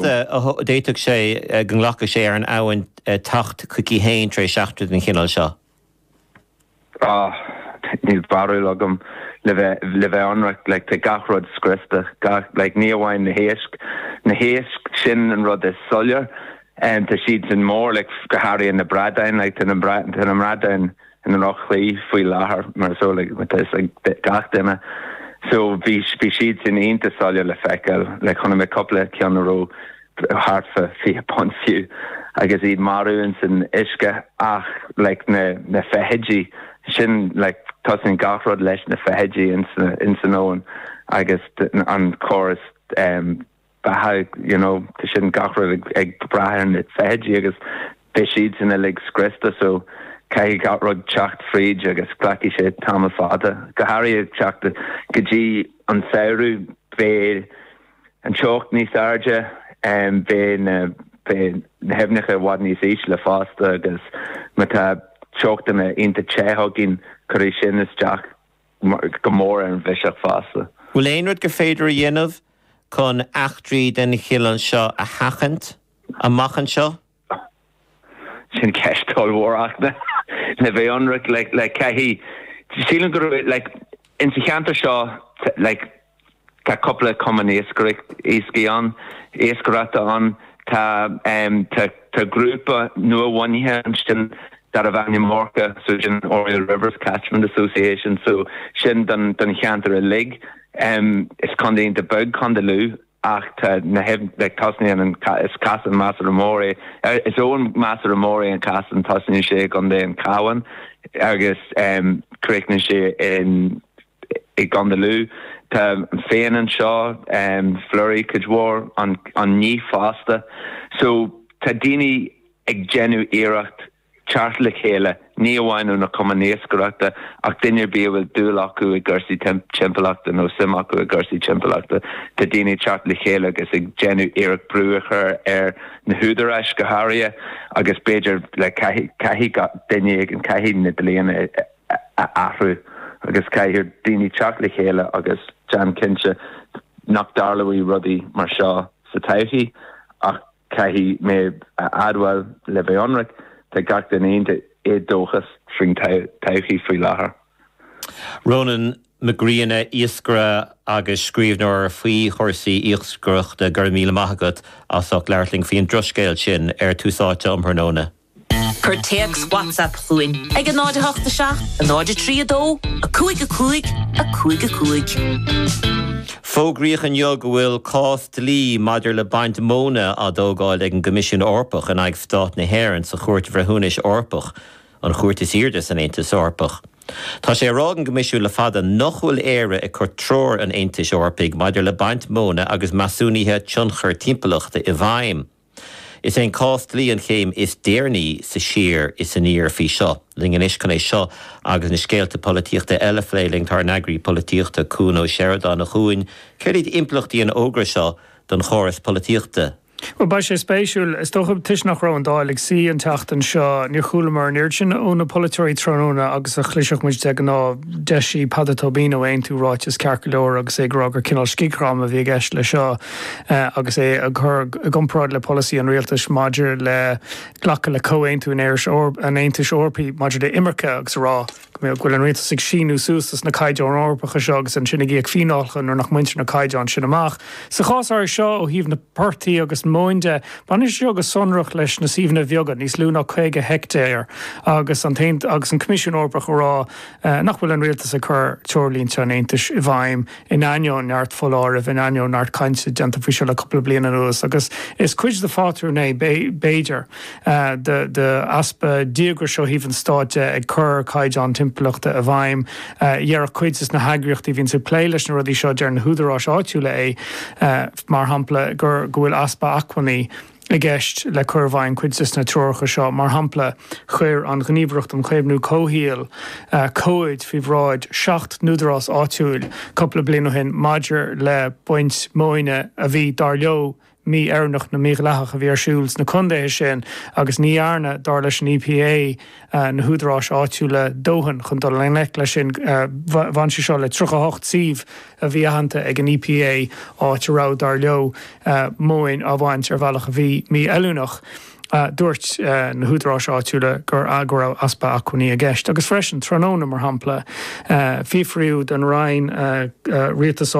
Achar a d'fhéadfadh sé go nglacfadh sé ar an abhainn teacht chuici féin tar éis eachtra den chineál seo. Á, níl barúil agam. Le bheith, le bheith ionraic, like, tá gach rud scriosta, gach, like, ní amháin na héisc, na héisc, sin an rud is soiléir, em, tá siad sin mór, like, go háirithe na bradáin, like, tá na, tá na bradáin, i ndroch-chaoi faoi láthair mar is eol ag gach duine so bhí siad sin iontach soiléir le feiceáil like chonaic mé cúpla ceann a raibh thart fa fiche punt fiú agus iad marbh ins an uisce ach like na na feithidí sin like tosaíonn gach rud leis na feithidí ins ins an abhainn agus an córas ehm beatha you know tá sé gach rud ag ag brath ar na feithidí agus beidh siadsan uilig scriosta so caithfidh gach rud teacht fríd agus glacfaidh sé tamall fada go háirithe ag teacht go dtí an samhradh beidh an teocht níos airde em beidh na beidh na haibhneacha i bhfad níos ísle fosta agus má tá teochtanna iontach te againn cuirfidh sin isteach go mór ar an bhiseach fosta. Bhfuil aon rud gur féidir a dhéanamh chun eachtraí den chineál seo a sheachaint amach anseo? Sin ceist ollmhór ach le bheith ionraic like caithfidh, sílim go raibh like insa cheantar seo like, Tá cupla cumann iascaireacht ann, iascaireachta ann. Tá grúpa nua-bhunaithe ansin darbh ainm ORCA, so sin Oriel Rivers Catchment Association, so sin don cheantar uilig. Is contae iontach beag Condae Lú ach tá na like tosnaíonn an, is Casán measartha mór é, is abhainn measartha mór é an Casán, tosnaíonn sé i gContae an Chabháin agus críochnaíonn sé in. i gContae Lú. Tá Fane anseo, Flurry cuid mhór, an Níth fosta. So tá daoine ag déanamh iarracht teacht le chéile, ní amháin ó na cumainn iascaireachta ach duine ar bith a bhfuil dúil acu i gcúrsaí timpeallachta nó suim acu i gcúrsaí timpeallachta. Tá daoine ag teacht le chéile agus ag déanamh iarracht brú a chur ar na húdaráis go háirithe agus b'fhéidir like caithfidh gach duine éigin, caithfidh na dlíonna a a athrú agus caithfidh daoine teacht le chéile agus déan cinnte nach dtarlóidh rudaí mar seo sa todhchaí ach caithfidh mé a admháil le bheith ionraic tá gach duine iontach éadóchasach faoin todhchaí faoi láthair. Rónán Mac Grianna, iascaire agus scríbhneoir faoi chúrsaí iascaireachta, go raibh míle maith agat as ucht labhairt linn faoi an drochscéal sin ar Tús Áite um thráthnóna. Cuir téacs WhatsApp chugainn ag 0:08 7 0:03 2 5 5 5 5. Fógraíodh inniu go bhfuil cás dlí maidir le baint móna á thógáil ag an gCoimisiún Eorpach in aghaidh Stát na hÉireann sa Chúirt Bhreithiúnais Eorpach, an chúirt is airde san Aontas Eorpach. Tá sé á rá ag an gCoimisiún le fada nach bhfuil Éire ag cur treoir an Aontais Eorpaigh maidir le baint móna agus measúnuithe tionchair timpeallachta i bhfeidhm. Is é an cás dlí an chéim is deireanaí sa siar is aniar faoi seo. Linn anois chun é seo agus na scéalta polaitíochta eile a phlé linn, tá ár n-eagraí polaitíochta, Cuan Ó Seireadáin, a Chuain. Céard iad impleachtaí an fhógra seo don chóras polaitíochta? Bhuel, beidh sé spéisiúil. Is dócha, toisc nach raibh an Dáil ag suí an tseachtain seo, níor chualamar an oiread sin ó na polaiteoirí tráthnóna agus a chloisfeadh muid de ghnáth. D'eisigh Peadar Tóibín ó Aontú ráiteas ceart go leor agus é ag rá gur cineál scigdhráma a bhí i gceist leis seo. agus é á chur i gcomparáid le polasaí an Rialtais maidir le glacadh le Comhaontú an Aontais Eorpaigh maidir le hImirce agus ag rá go bhfuil an Rialtas ag síniú suas dos na Caighdeáin Eorpacha seo agus ansin ag íoc fíneálacha nuair nach mbaintear na Caighdeáin sin amach. Sa chás áirithe seo, ó thaobh na bportaigh agus móin de, baineann sé seo go sonrach leis na suíomhanna bheaga, níos lú ná 50 heictéar, agus an agus an Coimisiún Eorpach ag rá nach bhfuil an Rialtas ag cur treoirlínte an Aontais i bhfeidhm. in ainneoin neart foláirimh, in ainneoin neart cainte déanta faoi seo le cupla bliain anuas, agus is cuid de phátrún é b'fhéidir, d'easpa díograis ó thaobh an Stáit de ag cur caighdeán timpeallachta i bhfeidhm. Déarfadh cuid de sna heagraíochtaí a bhíonns ag plé leis na rudaí seo, deir na húdaráis áitiúla é mar shampla, go bhfuil easpa acmhainní, i gceist le cur i bhfeidhm cuid de sna Treoracha seo. Mar shampla, chuir an Ghníomhaireacht um Chaomhnú Comhshaoil comhaid faoi bhráid seacht n-údarás áitiúil cupla bliain ó shin maidir le baint móine a bhí, dar leo, mí-oiriúnach nó mídhleathach a bhí ar siúl sna contaetha sin agus ní dhearna, dar leis an EPA, na húdaráis áitiúla dóthain chun dul i ngleic leis sin. Bhain sé seo le 38 suíomh a bhí aitheanta ag an EPA áit a raibh, dar leo, móin á bhaint ar bhealach a bhí mífheiliúnach. Dúirt na húdaráis áitiúla go raibh easpa acmhainní i gceist. Agus freisin, tráthnóna, mar shampla, fiafraíodh den Roinn Rialtais,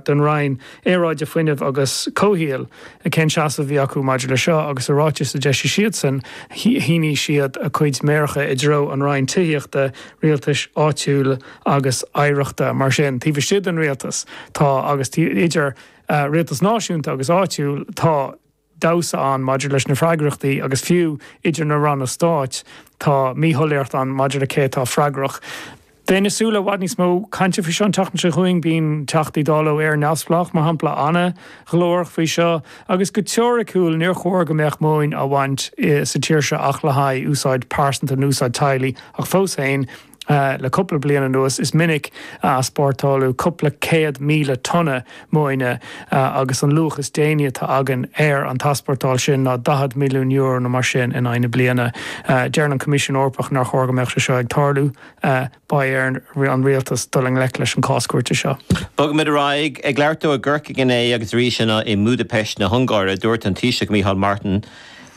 den Roinn Aeráide, Fuinnimh agus Comhshaoil cén seasamh a bhí acu maidir leis seo agus i ráiteas a d'eisigh siadsan shín siad a cuid méaracha i dtreo an Roinn Tithíochta, Rialtais Áitiúil agus Oidhreachta. Mar sin, taobh istigh den Rialtas tá agus idir Rialtas Náisiúnta agus Áitiúil tá. damhsa ann maidir leis na freagrachtaí agus fiú idir na Ranna Stáit tá míshoiléireacht ann maidir le cé atá freagrach. Bheinn ag súil le i bhfad níos mó cainte faoi seo an tseachtain seo chugainn. Bíonn Teachtaí Dála ó Éire Neamhspleách, mar shampla, an-ghlórach faoi seo agus go teoiriciúil níor chóir go mbeadh móin á bhaint sa tír seo ach le haghaidh úsáid pearsanta nó úsáid teaghlaigh ach fós féin Le cúpla bliain anuas is minic a easpórtáladh cúpla céad míle tonna móine agus an luach is déanaí atá againn ar an t-easpórtáil sin ná €40 milliún nó mar sin in aghaidh na bliana. Deireann an Coimisiún Eorpach nár chóir go mbeadh sé seo ag tarlú. Beidh ar an Rialtas dul i ngleic leis an cás cúirte seo. Bogfaimid ar aghaidh. Ag labhairt dó i gCorcaigh inné agus arís inniu i mBúdaipeist na hUngáire, dúirt an Taoiseach Micheál Martin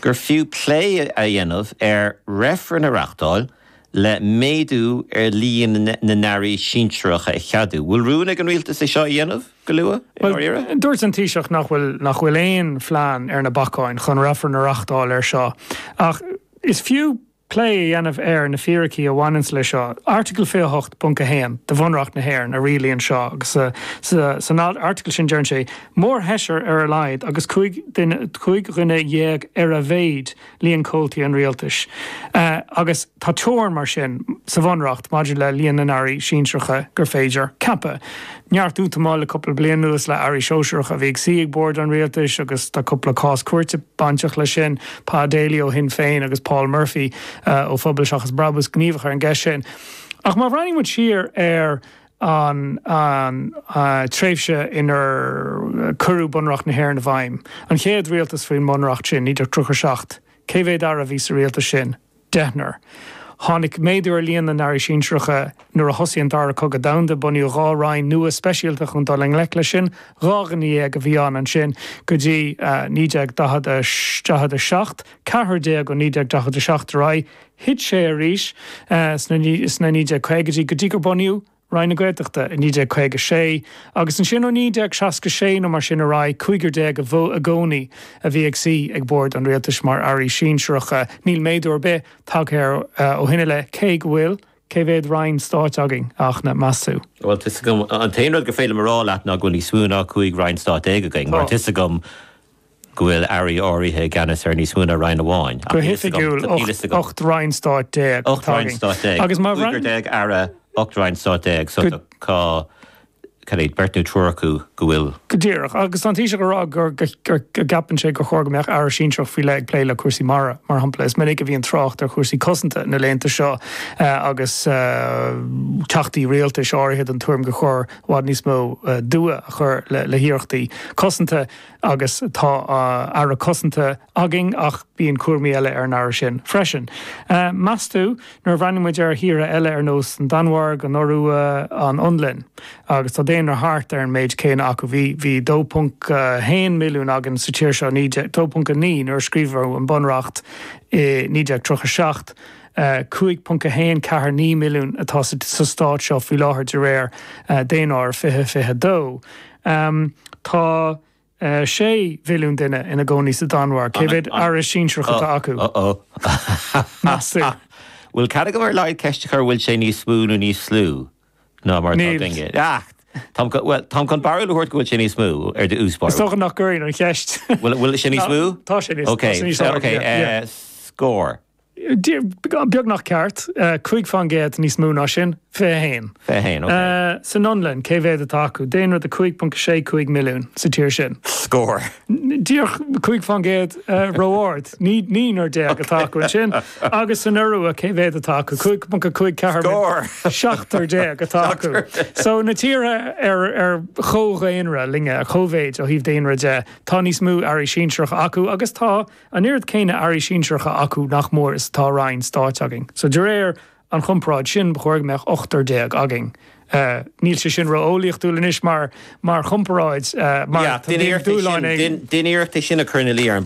gur fiú plé a dhéanamh ar reifreann a reachtáil, le méadú ar líon na nAirí sinsearacha a cheadú. Bhfuil rún ag an Rialtas é seo a dhéanamh go luath, i ndáiríre? Bhuel, dúirt an Taoiseach nach bhfuil nach bhfuil aon phlean ar na bacáin chun reifreann a reachtáil air seo. Ach is fiú plé a dhéanamh ar na fíricí a bhaineanns leis seo. Airteagal 28.1 de Bhunreacht na hÉireann a rialaíonn seo agus san airteagal sin deireann sé, 'Mórsheisear ar a laghad agus cúig dhuine dhéag ar a mhéid, líon comhaltaí an Rialtais agus tá teorann mar sin sa Bhunreacht maidir le líon na n-airí sinsearacha gur féidir ceapadh. Neart útamáil le cúpla bliain anuas le airí sóisearacha a bhí ag suí ag bord an Rialtais agus tá cúpla cás cúirte bainteach leis sin, Pa Daly ó Shinn Féin agus Paul Murphy ó Phobal Seachas Brabús gníomhach ar an gceist sin. Ach má bhreathnaíonn muid siar ar an tréimhse inar cuireadh Bunreacht na hÉireann i bhfeidhm, an chéad rialtas faoin mBunreacht sin, 1937. Cé mhéad Aire a bhí sa rialtas sin? Deichniúr. Tháinig méadú ar líon na nAirí Sinsearacha nuair a thosaigh an Dara Cogadh Domhanda. Bunaíodh dhá Roinn nua speisialta chun dul i ngleic leis sin. Dhá dhuine dhéag a bhí ann ansin go dtí 1947, 14 ó 1947 ar aghaidh. Thit sé arís sna 1950idí go dtí gur bunaíodh Roinn na Gaeltachta i 1956 agus ansin ó 1966 nó mar sin ar aghaidh cúigear déag i gcónaí a bhí ag suí ag bord an Rialtais mar Airí Sinsearacha. Níl méadú ar bith tagtha air ó shin i leith cé go bhfuil. Cé mhéad Roinn Stáit againn, a Fhachtna, meas tú? Bhuel, tá a fhios agam, an t-aon rud gur féidir liom a rá leat ná go bhfuil níos mó ná cúig Roinn Stáit déag againn mar tá a fhios agam, go bhfuil Airí áirithe i gceannas ar níos mó ná Roinn amháin. Go hoifigiúil, ocht Roinn Stáit déag atá againn. Agus má bhreathnaíonn. Cúigear déag Aire, ocht Roinn Stáit déag, so tá, cad é, beirt nó triúr acu go bhfuil. Go díreach. Agus tá an Taoiseach ag rá gur, gur, go gceapann sé gur chóir go mbeadh Aire sinsearach faoi leith ag plé le cúrsaí mara, mar shampla. Is minic a bhíonn trácht ar chúrsaí cosanta na laethanta seo agus Teachtaí Rialtais áirithe den tuairim gur chóir i bhfad níos mó dua a chur le hiarrachtaí cosanta. Agus tá Aire Cosanta againn ach bíonn cúramaí eile ar an Aire sin freisin. Meastú, nuair a bhreathnaíonn muid ar thíortha eile ar nós an Danmhairg, an Iorua, an Fhionlainn, agus tá daonra thart ar an méid céanna acu, bhí 2.1 milliún againn sa tír seo, 2.9 nuair a scríobhadh an Bunreacht i 1937, 5.149 milliún atá sa Stát seo faoi láthair de réir Daonáirimh 2022. Amm, tá, eh, sé mhilliún duine ina gcónaí sa Danmhairg, cé mhéad Aire Sinsearach atá acu, meastú? Bhfuil cead agam ar a laghad ceist a chur, bhfuil sé níos mó nó níos lú ná mar atá Níl. againne? Ach táim chun, bhuel, táim chun barúil a thabhairt go bhfuil sé níos mó, Is dócha nach gcuirfeá an cheist. Bhfuil, bhfuil sé níos mó? Tá, tá sé níos, tá sé níos, Ok, ok, yeah, yeah. eh, scór. beagnach ceart, cúig fán gcéad níos mó ná sin, fiche a haon. Fiche a haon, ok. San Fhionlainn, cé mhéad atá acu? Daonra de 5.65 milliún sa tír sin. Scór. Díreach, cúig fán gcéad, ró-ard, naonúr déag atá acu ansin. Agus san Iorua, cé mhéad atá acu? 5.54 milliún. Scór. Seachtar déag atá acu. So, na tíortha ar chomh-dhaonra linn, ar chomh-mhéid ó thaobh daonra de, tá níos mó Airí Sinsearacha acu agus tá An oiread céanna Airí sinsearacha acu, nach mór, is atá Roinn Stáit againn. So de réir an chomparáid sin ba chóir go mbeadh ochtar déag againn. Níl sé sin ró-eolaíochtúil anois mar chomparáid mar má dhéanann duine iarracht é sin a chur ina luí ar an bpobal.